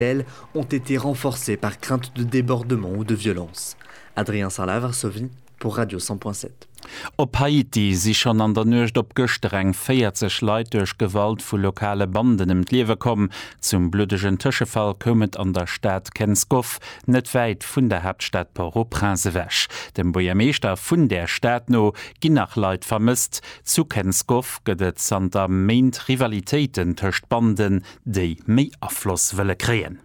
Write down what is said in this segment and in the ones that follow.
Elles ont été renforcées par crainte de débordements ou de violences. Adrien Sala, Varsovie pour Radio 100.7. Op Haiti si schonn an der Nuecht op gëschter eng 40 Leit duerch Gewalt vu lokale Banden ëm d'Liewe komm. Zum bluddegen Tëschefall koum et an der Stad Kenskòf, net wäit vun der Haaptstad Port-au-Prince ewech. Dem Buergermeeschter vun där Stad no ginn nach Leit vermësst. Zu Kenskòf gëtt et zanter Méint Rivalitéiten tëscht Banden, déi méi Afloss wëlle kréien.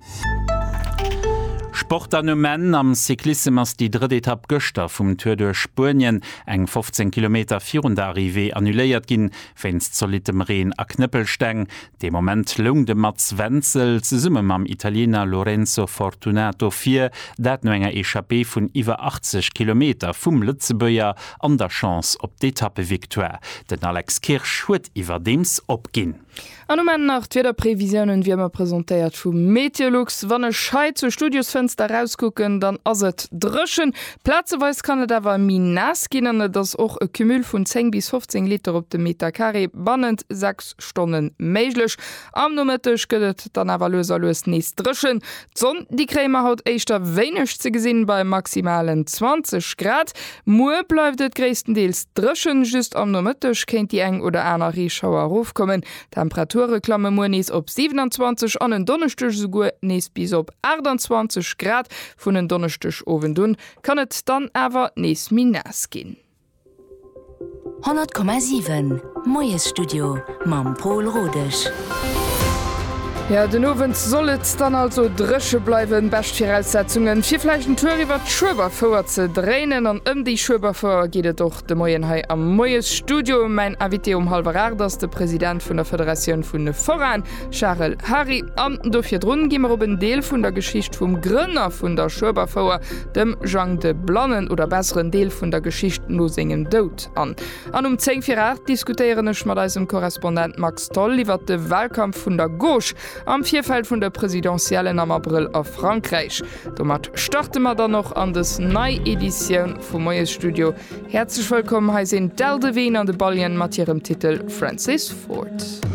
Sport an um Enn am Cyclissem ass déi drëtt Etapp gëschter vum Tour duerch Spuenien eng 15 Kilometer virun der Arrivée annuléiert ginn, wéinst zolittem Reen a Knëppelsteng. De Moment loung de Mats Wenzel zesumme mam Italiener Lorenzo Fortunato vir, dat no enger Echappée vun iwwer 80 Kilometer vum Lëtzebuerger an der Chance op d'Etappevictoire. Den Alex Kirsch huet iwwerdeems opginn. An um Enn nach d'Wiederprévisiounen wie ëmmer presentéiert vu Meteolux. Wann ech hei zur Studiosfënster erauskucken, dann ass et dréchen. Plazeweis kann et awer méi naass ginn an et ass och e Cumul vun 10 bis 15 Liter op de Meter Carré bannent 6 Stonne méiglech. Am Nomëtteg gëtt et dann awer lues a lues nees dréchen, D'Sonn, déi kréie mer haut éischter wéineg ze gesinn, bei maximalen 20 Grad. Muer bleift et gréisstendeels dréchen, just am Nomëtteg kéint déi eng oder aner Reeschauer erofkommen. D'Temperature klamme muer nees op 27 an en Donneschdeg esouguer nees bis op 28 Grad. Vun en Donneschdegowend un kann et dann awer nees méi naass ginn. 100,7 Moiesstudio mam Pol Rodesch. Jo, den Owend soll et dann also dréche bleiwen. Bescht Viraussetzungen, fir vläicht en Tour iwwert d'Schueberfouer ze dréinen. An ëm déi Schueberfouer geet et och de Moien hei am Moiesstudio. Mäin Invité um hallwer aacht ass de President vun der Federatioun vun de Foraen, Charel, Harry, an do virdrun gi mer op en Deel vun der Geschicht vum Grënner vun der Schueberfouer, dem Jang de Blannen, oder besser en Deel vun der Geschicht no sengem Doud an. An um 10 vir 8 diskutéieren ech mat eisem Korrespondent Max Tholl iwwert de Wahlkampf vun der Gauche am Virfeld vun de Presidentiellen am Abrëll a Frankräich. Domat starte mer dann och an des nei Editioun vum Moiesstudio. Häerzlech wëllkomm, hei sinn d'Elle Devine an de Balian mat hirem Titel Francis Ford.